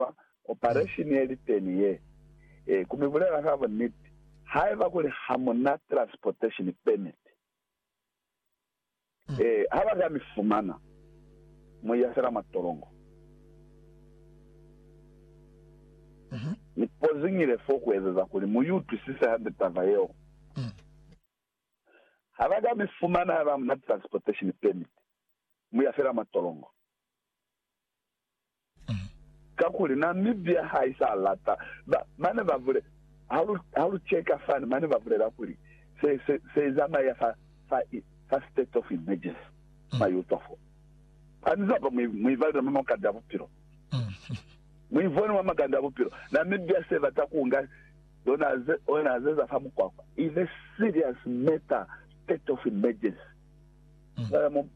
fa opareshini ye li teni ye. Ee, ku mi bulela ka buniti, haiba kuli ha mu na transportation permit, ee, ha ba ka mi fumana, mu iya fela mwa tolongo. Ni poziñile fo ku ezeza kuli mu utwisise hande taba yeo. Ha ba ka mi fumana haiba ha mu na transportation permit, mu iya fela mwa tolongo. Kakuli Namibia ha i sa lata. Ba, ba ne ba bule, ha lu, ha lu cheka fani, mane ba bulela kuli, Se, se, se zamaya fa, fa, fa state of emergency. Mwa i utwa foo. Ha ni zaba, mu, mu ibalile mwa makande a bupilo. Mu ivone mwa makande a bupilo. Namibia se bata ku nga zona ze, ona ze za fa mukwakwa. Is a serious matter, state of emergency. Cwale mu,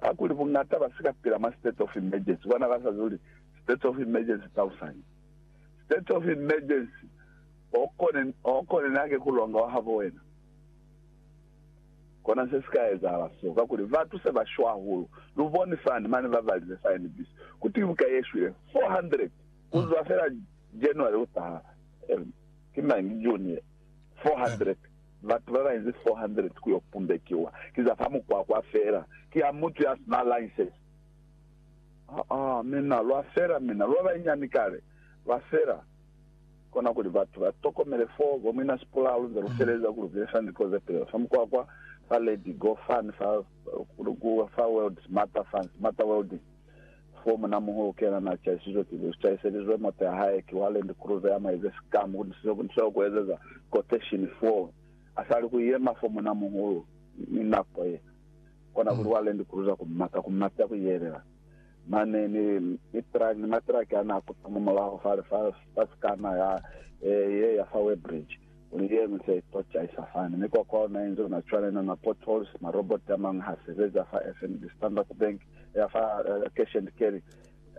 ha kuli buñata ba si ka pila mwa state of emergency, bona ba sa zuli state of emergency thousand. State of emergency, o kone, o kone na ke ku longa wa habo wena. Kona se si ka ezahala so, kakuli batu se ba shwa hahulu. Lu boni fani, mane ba balize fa NBC, ku twi buka ye shwile 400 ku zwa fela January u taha, eh, ki mañi, June ye, 400. Batu babainzi 400 kuyo pumbekiwa ki za fa mukwakwa fela, ki a mutu ya sina license. Aa, mina, lwa fela, mina, lwa banyinyani kale, lwa fela. Kona kuli batu ba tokomele fo, bo Mwina Sipula, lu nze lu feleza ku lu besa ni koze pele fa mukwakwa, fa Lady Go Fun, fa, ku, fa World Smarter, fa Smarter Welding. F'o munamuhi u kena n'a chaisizwe pili, u chaiselizwe moto ya hae ki wa Land Cruiser ya maize sikamu ku nisize ku nisize ku ezeza quotation f'o a sa li ku yema f'o munamuhulu ni nako ye kona kuli wa Land Cruiser ku mata, ku mata ku yelela mane ni ni truck ni matraki a n'a kuta mwa mulaho fale fa fa sikana ya ye ya fa Weybridge. Kuli ye ñwi se itocaisa fani. Mikwakwa ona inze ona cwale, ina ma potholes, ma robot amañwi ha sebeza fa FNB, Standard Bank, ya fa Cash and Carry,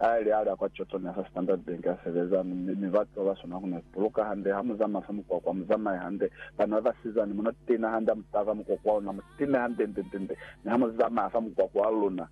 a ili ali a kwa Chorlton ya fa Standard Bank a sebeza, mi, mi batu baba swana ku ni buluka hande. Ha mu zamaya fa mukwakwa, mu zamaye hande. Bana baba sizani, mu no tiina hande, ha mu tava mukwakwa ona, mu tiine hande, nde, nde, nde. Mi ha mu zamaya fa mukwakwa wa luna,